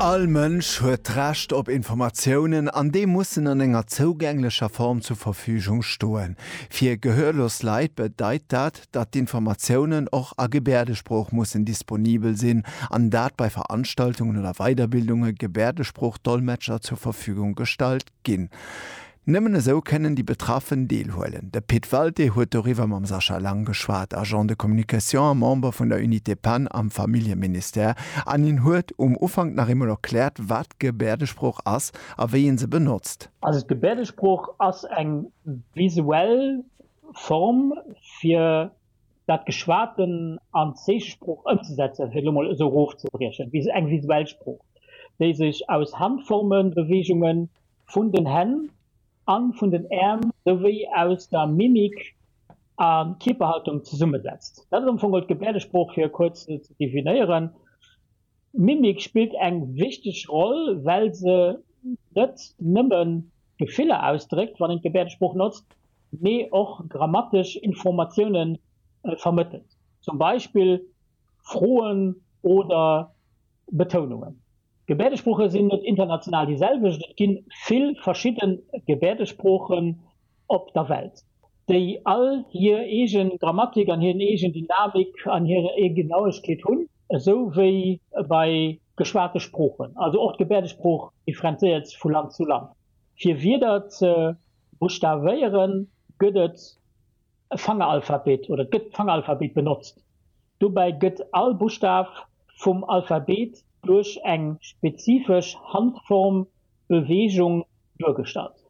All Mënsch huet d'Recht op Informatiounen an déi mussen an enger zougänglecher Form zur Verfügung stoen. Fir gehörlos Leit bedeit dat, datt d'Informatiounen och a Gebäerdesprooch mussen disponibel sinn an dat bei Veranstaltungen oder Weiderbildunge Gebäerdesprooch-Dolmetscher zur Verfügung gestallt ginn. Nëmmen esou kënnen déi Betraffen deelhuelen. De Pit Walté huet doriwwer mam Sascha Lang geschwat, Agent de communication a Member vun der Unité Pan am Familljeministère, an hien huet um Ufank nach eemol erkläert, wat d'Gebäerdesprooch ass a wéi ee se benotzt. Also d'Gebäerdesprooch ass eng visuell Form, fir dat Geschwaten an d'Zeechesprooch ëmzesetzen, fir et elo mol esou erofzebriechen, wéi eng visuell Sprooch, déi sech aus Handformen, Beweegungen vun den Hänn a vun den Äerm souwéi aus der Mimik a Kierperhaltung zesummesetzt. Dat ass am Fong geholl d'Gebäerdesprooch, fir e kuerz ze definéieren. D'Mimik spillt eng wichteg Roll, well se net nëmme Gefiller ausdréckt, wann een d'Gebäerdesprooch notzt, mee och grammatesch Informatioune vermëttelt, zum Beispill Froen oder Betounungen. D'Gebäerdesprooche sinn net international déi selwecht, et gi vill verschidde Gebäerdesproochen, op der Welt, déi all hir eegen Grammatik an hiren eegen Dynamik an hir eegen Genauegkeet hunn, esou wéi bei geschwate Sproochen, also och d'Gebäerdesprooch differenzéiert vu Land zu Land. Fir Wierder ze buschtavéieren, gëtt et e Fangeralphabet oder et gëtt d'Fangeralphabet benotzt. Dobäi gëtt all Buschtaf vum Alphabet duerch eng spezifesch Handformbeweegung duergestallt.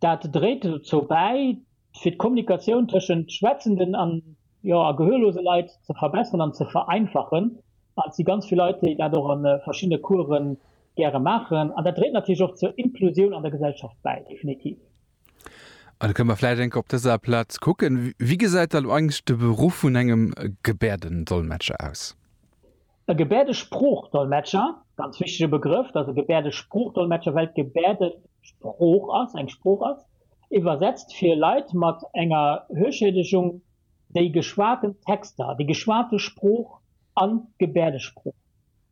Dat dréit dozou bäi, fir d'Kommunikatioun tëschent schwätzenden a gehörlose Leit ze verbesseren an ze vereinfachen. An et si ganz vill Leit, déi dat och a verschiddene Course gäre maachen. An dat dréit natierlech och zur Inklusioun an der Gesellschaft bäi, definitiv. An da kënne mer vläicht eng Kéier op dëser Plaz kucken, Wéi gesäit da lo eigentlech de Beruff vun engem Gebäerdendolmetscher aus? E Gebäerdesprooch-Dolmetscher, ganz wichtege Begrëff, dass e Gebäerdesprooch-Dolmetscher, well d'Gebäerde Sprooch ass, eng Sprooch ass, iwwersetzt fir Leit mat enger Hörschädegung déi geschwaten Texter, déi geschwate Sprooch an d'Gebäerdesprooch.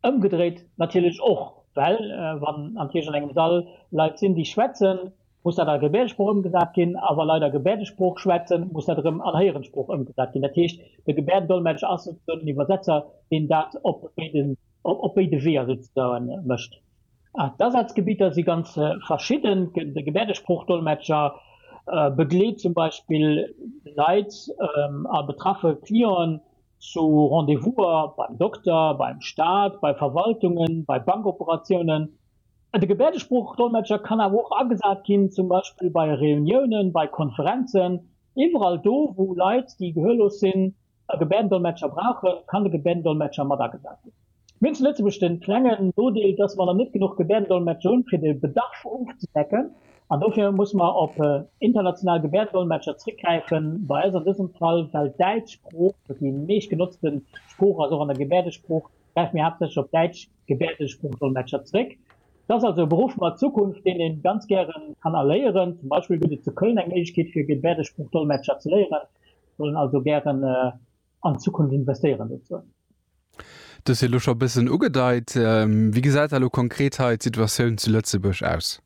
Ëmgedréit natierlech och, well wann natierlech an engem Sall Leit sinn, déi schwätzen, muss dat a Gebäerdesprooch ëmgesat ginn, a wa Leit a Gebäerdesprooch schwätzen, muss dat erëm an Héierensprooch ëmgesat ginn. Dat heescht, de Gebäerdendolmetscher ass souzesoen den Iwwersetzer, deen dat op béiden, op béide Weeër souzesoen mécht. D'Asazgebidder si ganz verschidden. De Gebäerdesprooch-Dolmetscher begleet zum Beispill Leit a betraffe Clienten zu Rendez-vouser beim Dokter, beim Staat, bei Verwaltungen, bei Bankoperatiounen, De Gebäerdesprooch-Dolmetscher kann awer och agesat ginn, zum Beispill bei Reuniounen, bei Konferenzen. Iwwerall do, wou Leit, déi gehörlos sinn, e Gebäerdendolmetscher brauchen, kann de Gebäerdendolmetscher mat agesat ginn. Mir hunn zu Lëtzebuerg de klengen Nodeel, dass mer nach net genuch Gebäerdendolmetscher hunn, fir de Bedarf ofzedecken. An dofir muss mer op international Gebäerdendolmetscher zréckgräifen. Bei eis an dësem Fall, well d'Däitsch Sprooch déi meeschtgenotzte Sprooch ass, och an der Gebäerdesprooch, gräife mir haaptsächlech op Däitsch Gebäerdesproochdollmetscher zréck. Et ass also e Beruff mat Zukunft, deen ee ganz gäre kann erléieren. Zum Beispill gëtt et zu Köln eng Méiglechkeet fir Gebäerdesproochdollmetscher ze léieren. Ech wollen also gären an d'Zukunft investéieren dozou. Du hues et elo scho e bëssen ugedeit. Wéi gesäit da elo konkret hei d'Situatioun zu Lëtzebuerg aus?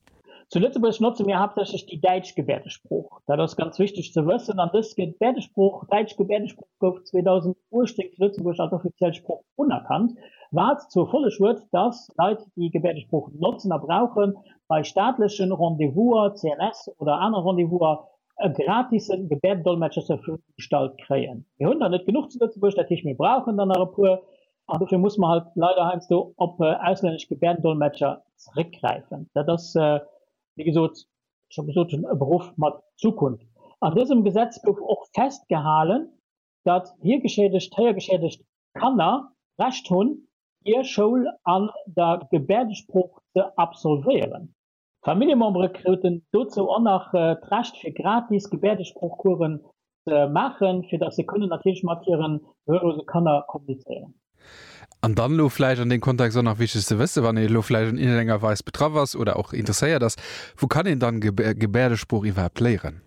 Zu Lëtzebuerg notze mir haaptsächlech déi däitsch Gebäerdesprooch. Dat ass ganz wichteg ze wëssen. An dës Gebäerdesprooch, däitsch Gebäerdesprooch, gouf 2018 zu Lëtzebuerg als offiziell Sprooch unerkannt, wat zur Folleg huet, datt Leit, déi Gebäerdesprooch notzen a brauchen, bei staatlechen Rendez-vouser, CNS, oder aner Rendez-vouser e gratisen Gebäerdendolmetscher zur Verfügung gestallt kréien. Mir hunn der net genuch zu Lëtzebuerg, dat heescht, mir brauchen der nach e puer. An dofir musse mer halt leider heiansdo op auslännesch Gebärdendolmetscher zréckgräifen. Dat ass, wéi gesot, scho gesot hunn, e Beruff mat Zukunft. An dësem Gesetz gouf och festgehalen, datt hiergeschädegt, héiergeschädegt Kanner d'Recht hunn, hir Schoul an der Gebäerdesprooch ze absolvéieren. D'Familljemembere kruten dozou och nach d'Recht fir gratis Gebäerdesproochcoursen ze maachen, fir datt se kënnen natierlech mat hiren gehörlose Kanner kommunizéieren. An dann elo vläicht an deem Kontext och nach wichteg ze wëssen, wann ee elo vläicht an iergendenger Weis betraff ass oder och interesséiert ass, Wou kann een dann Gebäerdesprooch iwwerhaapt léieren?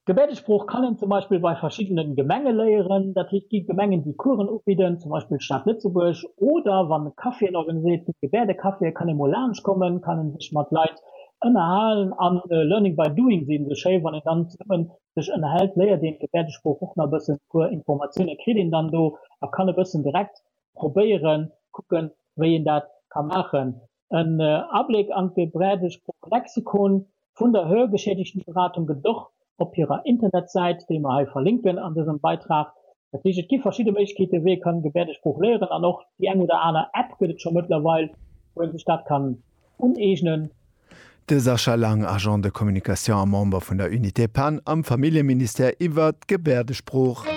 D'Gebärdesprooch kann een zum Beispill bei verschiddene Gemenge léieren. Dat heescht, et gi Gemengen, déi Coursen ubidden, zum Beispill d'Stad Lëtzebuerg. Oder wann e Café en organiséiert, gëtt et Gebärdecaféen, kann ee mol laanscht kommen, kann ee sech mat Leit ënnerhalen. A learning by doing, seet ee sou schéi. Wann een dann zesummen sech ënnerhält, léiert een d'Gebärdesprooch och nach e bëssen. E puer Informatioune kritt een dann do a kann e bëssen direkt probéieren, kucken, wéi een dat ka maachen. en Abléck an de Brädesprooch Lexikon vun der Hörgeschädigtenberatung gëtt et och op hirer Internetsäit, déi mer hei verlinken an dësem Beitrag. Dat heescht, et gi verschidde Méiglechkeeten, wéi ee kann Gebärdesprooch léieren, an och déi eng oder aner App gëtt et scho mëttlerweil, wou ee sech dat kann uneegnen. De Sascha Lang, Agent de communication a Member vun der Unité Pan am Familljeministère iwwert d'Gebärdesprooch.